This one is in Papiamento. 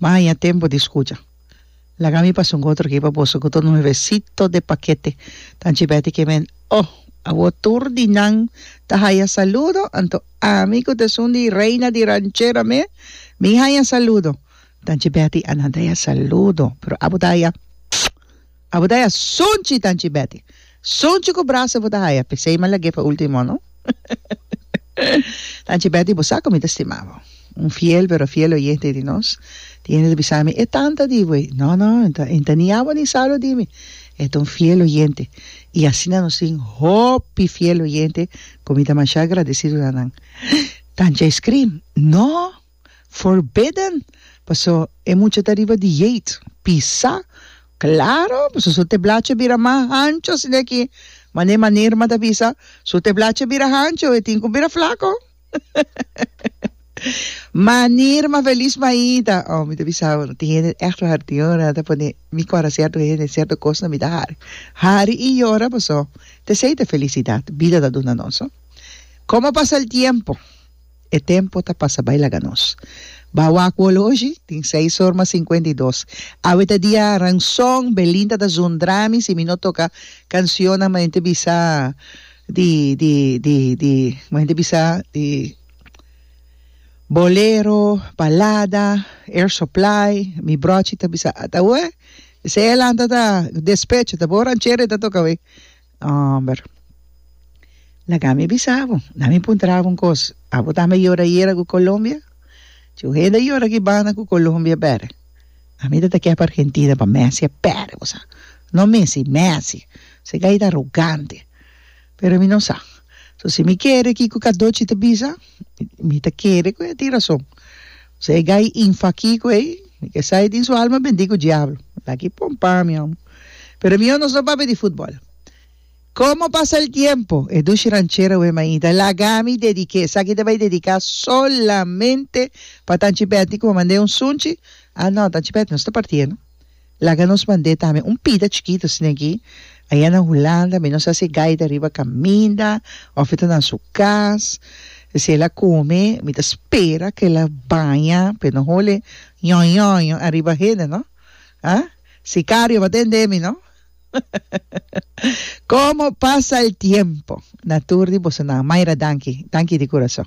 M'a haña tempu di skucha. Laga mi pasa un otro ki pa boso ku tur nuevesito de pakete. Tanchi Betty Kemen, Oh, awor tur di nan ta haya saludo, anto ami ku ta esun di reina di ranchera mes, mi haya saludo. Tanchi Betty, Anan ta haya saludo, pero abo ta haya. Abo ta haya sonchi tanchi Betty. Sonchi cu brasa bo ta haya p'esey m'a lag'é pa ultimo no. Tanchi Betty bo sa cu mi ta stima bo. Un fiel pero fiel oyente di nos. Tiene ta bisa mi e tanta di bo. No no e no ta ni abo ni Saulo di mi. E ta un fiel oyente. Y asina nos tin hopi fiel oyente cu mi ta masha agradecido na nan. Tanchi a scream, No! Forbidden, paso e mucha ta riba di yeit, pisa, claro, paso su teblachi a bira mas hancho sina aki, mane manerma ta bisa, su teblachi a bira hancho, e tin cu bira flaco, manerma feliz maida, oh mi ta bisa bo, tin hende echt ta hari, tin hende ta pone mi cora cierto hende, cierto cosnan mi ta hari, hari y yora, paso tesey ta felicidad, bida ta duna nos, como pasa el tiempo. E tempo ta pasa bai laga nos. Ba wak wolo oshi, tin seis or mas sinkuenta i dos. Awe ta dia ranson, Belinda ta zundra mi si mi no toka kansionnan ma henter bisa di di di di ma henter bisa di bolero, balada, air supply, mi brochi ta bisa, ta weh, esei e lanta ta despecho, ta bo ranchero e ta toka weh. Homber, laga mi bisa bo, na mi puntra bo un kos, abo ta me yora yera ku Colombia? Chu hende yora ki banda ku Colombia bere. Ami ta ta ke pa Argentina pa Messi a pere bo sa. No Messi, Messi. Sega i ta arogante. Pero mi no sa. So si mi kere kiko Cardochi ta bisa. mi ta kere ku e tin rason so e gai infa kiko ei mi ke sa e tin su alma bendi ku diablo aki pompa mi amo pero mi onos no papia di futbol komo pasa el tiempo e dushi ranchera wea mainta laga mi dedike esaki ta bai dedika solamente pa tanchi beti ku a manda e un sunchi a no tanchi beti no sta partie no Laga nos mand'é tambe un pida chikito sne'ki. Aya na Hulanda mi nos a hasi gaita riba kaminda òf e ta na su kas. Si el a kome mi ta spera ku el a baña p'e no hole ñoñoño ariba hende no. Ha? Sikario pa tende mi no. Komo pasa el tiempo. Na tur di boso nan. Mayra danki. Danki di kurason.